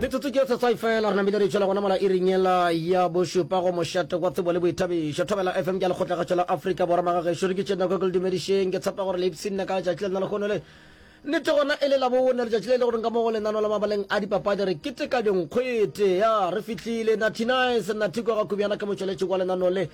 metsotso ke setswai fela re namile re tšwela gona mola iring yela ya bošupa go mošate kwa tsebo le boithabišo thobela fm ke a lekgotlagatšo la afrika borwa magagešo re ke tšena kwa ke le dumedišeng ke tshepa gore leipsi nna ka letšatši le nna lekgono le nnete gona e le labone letšatši le e le goreng ka mo go lenano la mabaleng a dipapadi re keteka dinkgwete ya re fihlile nathinice nathiko ga kubjana ke motšweletši wa lenano le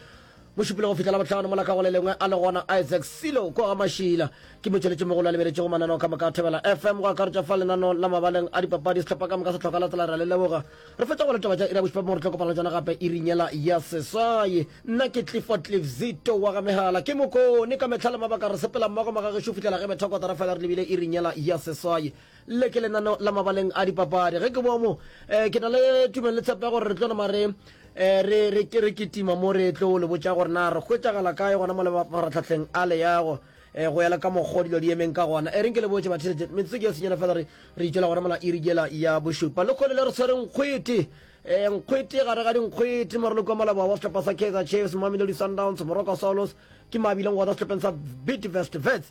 Mo šupile go fihla Labohlano mola ka go le lengwe a le gona Isaac Silo ko ga Mašila. Ke motšweletši mogolo a lebeletše go mananeo ka moka a Thobela FM go akaretša fa lenanong la mabaleng a dipapadi sehlopha ka moka se tlhoka latsela ra le leboga. Re fetša go letaba tša ira bošupa mo re tlo kopana le tšona gape iring yela ya seswaye. Nna ke Clifford Cliff Zito wa ga megala ke mokone ka mehla le mabaka re sepela mmogo magagešu fihlela ge methokotara fela re lebile iring yela ya seswaye. Le ke lenaneo la mabaleng a dipapadi. Ge ke boa mo, ke na le tumelo le tshepo ya gore re tlo nama re re re re kitima mo re tlo le botša gore na re hwetšagala kae gona mo le mafaratlhahleng a leago go ya le ka mokgwa dilo di emeng ka gona. E reng ke le botše batheletše, metsotso ke ya senyela fela re re itšwela gona mola iri yela ya bošupa. Lekgole le re tshwere nkgwete, nkgwete gare ga dinkgwete, maroloko a maloba wa sehlopha sa Kaizer Chiefs, Mamelodi Sundowns, Moroka Swallows ke mabileng gona sehlopheng sa Bidvest Wits.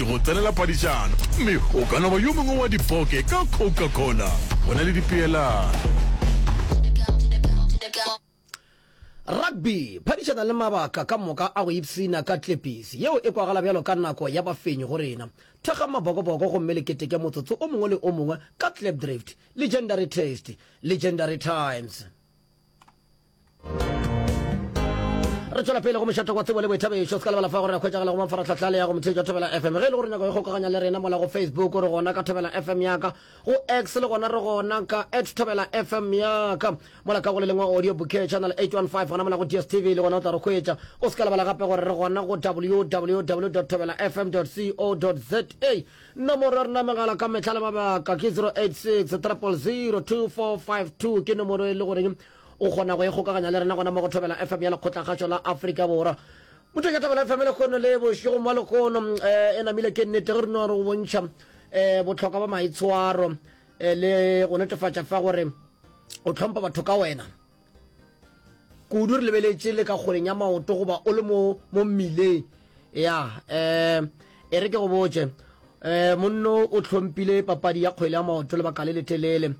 ke go tsenela padišano, mme o ka no ba yo mongwe wa dipoke ka Coca-Cola. Go na le dipeelano. Rugby, phadišana le mabaka ka moka a go ipshina ka tlepisi yeo e kwagala bjalo ka nako ya bafenyi go rena. Thekga mabokoboko gomme le keteke motsotso o mongwe le o mongwe ka Klipdrift, Legendary Taste, Legendary Times. re tswela pele go mešata kwa tsebo le boithabišo se ka lebala fa gore re kgwetsagala go mafaratlhatlha le ya go motheetša thobela fm ge e le gore nyako e kgokaganya le rena mola go facebook re gona ka thobela fm yaka go x le gona re gona ka at thobela fm yaka mola ka go le lengwe audio bouquet channel 815 gona mola go dstv le gona o tla re kgwetša o se ka lebala gape gore re gona go www thobela fm co za nomoro ya rena megala ka metlha le mabaka ke 086 300 2452 ke nomoro e le goreng O kgona go ikgokaganya le rena gona mo go Thobela FM ya Lekgotlakgašo la Afrika Borwa. Motho ya Thobela FM lehono le bošego mo lehono um e namile ke nnete ge re no re go bontšha um botlhokwa ba maitshwaro um le go netefatša fa gore o tlhompha batho ka wena kudu re lebeletše le ka kgoleng ya maoto goba o le mo mo mmileng ya um e re ke go botše um monno o tlhompile papadi ya kgwele ya maoto lebaka le letelele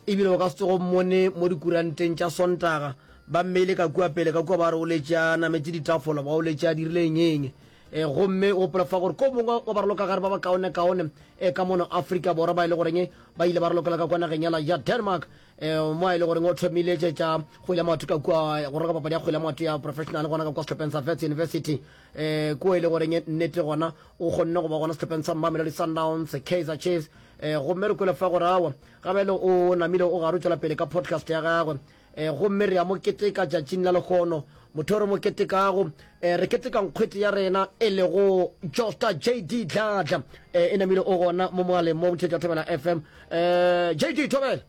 E bile o ka se tsoge o mmone mo dikuranteng tša Sontaga, ba mmeile ka kua pele ka kua ba re o letše a nametše ditafola, ba o letše a dirile eng-eng. E, gomme o gopola fa gore ko mongwe wa barolokagare ba ba kaone-kaone e, ka mono Afrika Borwa ba e le goreng ba ile ba rolokela ka kua nageng ya la ya Denmark, e, mo a e le goreng o thomile tše tša kgwele ya maoto ka kua go roka papadi ya kgwele ya maoto ya professional gona ka kua sehlopheng sa Wits University, e, ko e le goreng nnete gona o kgonne go ba gona sehlopheng sa Mamelodi Sundowns, Kaizer Chiefs, e, gomme re kwele fa gore awa Gabele o namile o gare o tšwela pele ka podcast ya gagwe. E, gomme re a mo keteka tšatšing la lehono. Motho o re mo ketekago, e, re keteka nkgwete ya rena e lego Josta JD Dladla. E, e namile o gona mo mogaleng mo Botheetša Thobela FM. E, JD Thobela!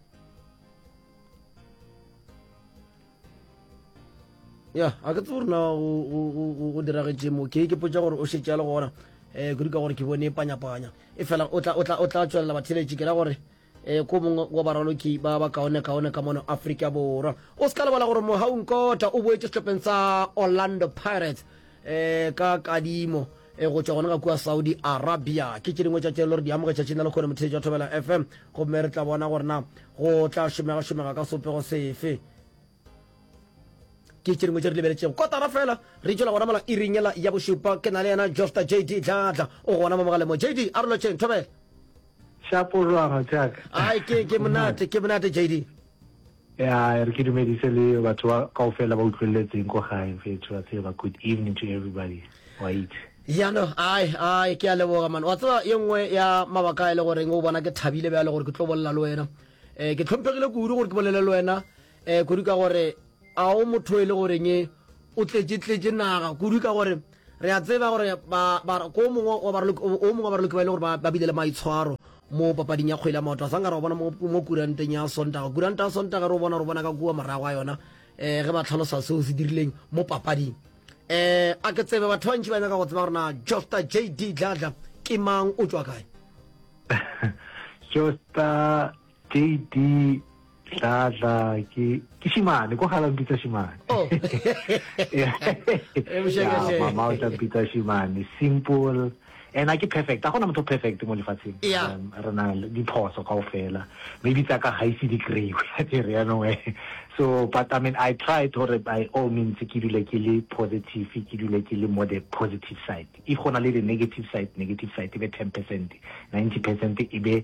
ya a ke tsebo rena go diragetše mo ke ke potsa gore o šetše ya le gona um kudu ka gore ke bone panyapanya e fela o tla tswelela batheletši ke ra gore um ko mongwe wa baraloki ba ba kaone kaone ka mono aforika borwa o se ka lebala gore mogaung kota o boetse sehlopheng sa orlando pirates um ka kadimo e go tšwa gona ga kua saudi arabia ke tše dingwe tša tše le gore di amoge tšatšing la lekgone motheetši wa thobela fm gomme re tla bona gore na go tla šomega-šomega ka sopego sefe ke tše dingwe tše re lebeletšego kotara fela re tšwela gona mola iringela ya bošupa ke na le yena jofta jd dlatla o gona mo mogalemo jd a re lotšheng thobela šapolwaga jaaka ai ke ke monate ke monate jd Ya re ke dumedise le batho ba kaofela ba utlwelletseng ko gae mfethu wa tseba good evening to everybody wa itse. Ya no ai ai ke a leboga man wa tseba ye nngwe ya mabaka a e le goreng o bona ke thabile bjale gore ke tlo bolela le wena eh ke tlhomphegile kudu gore ke bolele le wena eh kudu ka gore a o motho e le goreng o tletše tletše naga kudu ka gore Re a tseba gore ba, ba, ko o mongwe wa baraloki, o, o mongwe wa baraloki ba e le gore ba, ba bile le maitshwaro mo papading ya kgwele ya maoto. A sa nka re o bona mo, mo kuranteng ya Sontaga. Kuranta ya Sontaga re o bona, re o bona ka kua morago ga yona, eh, ge ba tlhalosa seo se dirileng mo papading. Eh, a ke tsebe batho ba bantši ba nyaka go tseba gore na Josta JD Dladla ke mang, o tšwa kae? Josta JD Dladla ke ke shimane ko gala mpitsa shimane oh. mama o tla mpitsa shimane simple and a ke perfect a gona motho perfect mo lefatsheng um, re na le diphoso kao fela maybe tsa ka ga ise di kry-we a ke re yanong eh. so but i mean i tried gore by all means ke dule ke le positive ke dule ke le more the positive side if go na le the negative side negative side e be ten percent ninety percent e be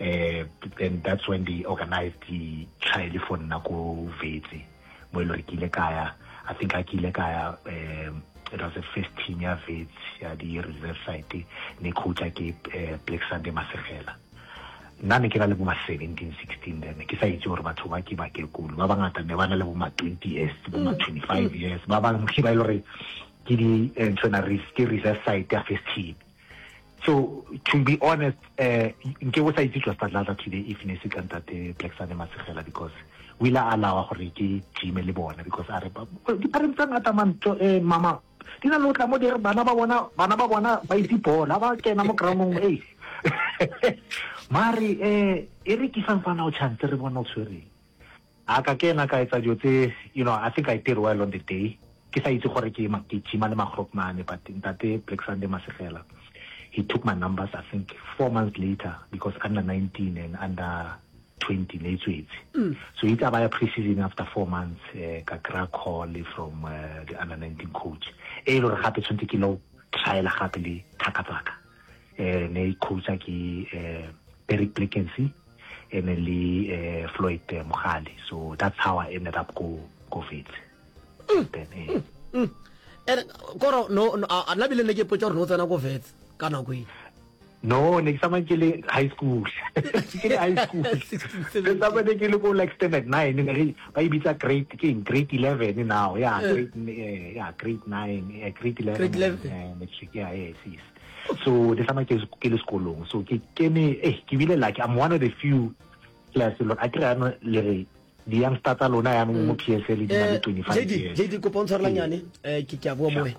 Uh, then that's when they organized the trial for nna ko Vetse mo e le gore ke ile kaya i think a ke ile kaya um it was the first team ya Vetse ya di reserve site ne coacha ke uh, Black Sunday Masegela nna ne ke na le bo ma 17 16 then ke sa itse gore batho ba ke bakekolo ba bangata ne ba na le bo ma 20 years bo ma 25 mm. years ba bangwe ba e le gore ke di eh, ntho na ke reserve site ya first team So to be honest, uh, nke o sa itse tšwa Stadlata today if ne se ka ntate Black Sunday Masegela because o ile a alawa gore ke time le bona because a re dipareng tsa ngata manto eh, mama di na le o tla mo dire bana ba bona bana ba bona ba itse bola ba kena mo groundong e mare eh e re ke sa mfana o chance re bona o tshwereng A ka kena ka etsa dilo tse, you know, I think I did well on the day, ke sa itse gore ke ke gym-a le magrop mane, but Ntate Black Sunday Masegela, he took my numbers I think four months later, because under 19 and under 20 ne e tswetse. So itse a baya pre-season after four months, eh, ka kry-a call from eh, the under 19 coach, e le gore gape tshwantse ke lo trial-a gape le thaka tsaka. eh, ne e coacha ke eh, Barry Plickency and then le eh, Floyd eh, Mogale so that's how I ended up go go Wits mm. then eh. mm. mm. and koro no no a na bile ne ke potsa gore no tsena go Wits ka nako e no ne ke tsamaya ke le high school ke le high school ke tsamaya ke le ko like standard nine Ba e bitsa grade ke eng grade eleven now ya eh. grade eh, ya grade nine eh, grade eleven eh, matric ya yes yes so this time ke ke le sekolong so ke kene eh ke bile like i'm one of the few class lo a kry ano le re di yang sta tsa lona yang mo mm. PSL di na le 25 eh, years JD kopo ntshwarelanyane eh ke ke a boa mo wena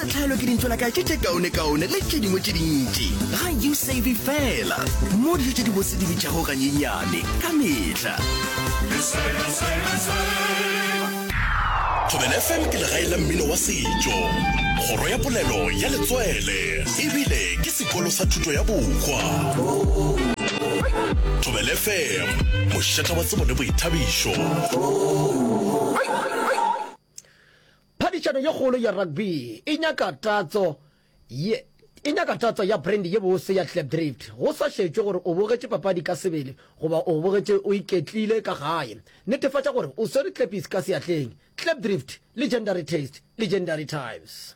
tlhaelo ke dintšola ka tše tše kaonekaone le tše dingwe tše dintši ga you save fela mo dijo tše di bose di bitšago ganyenyane ka metlha thobela fm ke legae la mmino wa setšo kgoro ya polelo ya letswele ebile ke sekolo sa thuto ya bokgwa thobela fm mošata wa tsebo le boithabišo Phadišano ye kgolo ya rugby e nyaka tatso ye e nyaka tatso ya brandy ye bose ya Klipdrift. Go sa šetšwe gore o bogetše papadi ka sebele goba o bogetše o iketlile ka gae, netefatša gore o swere klepisi ka seatleng. Klipdrift, Legendary Taste, Legendary Times.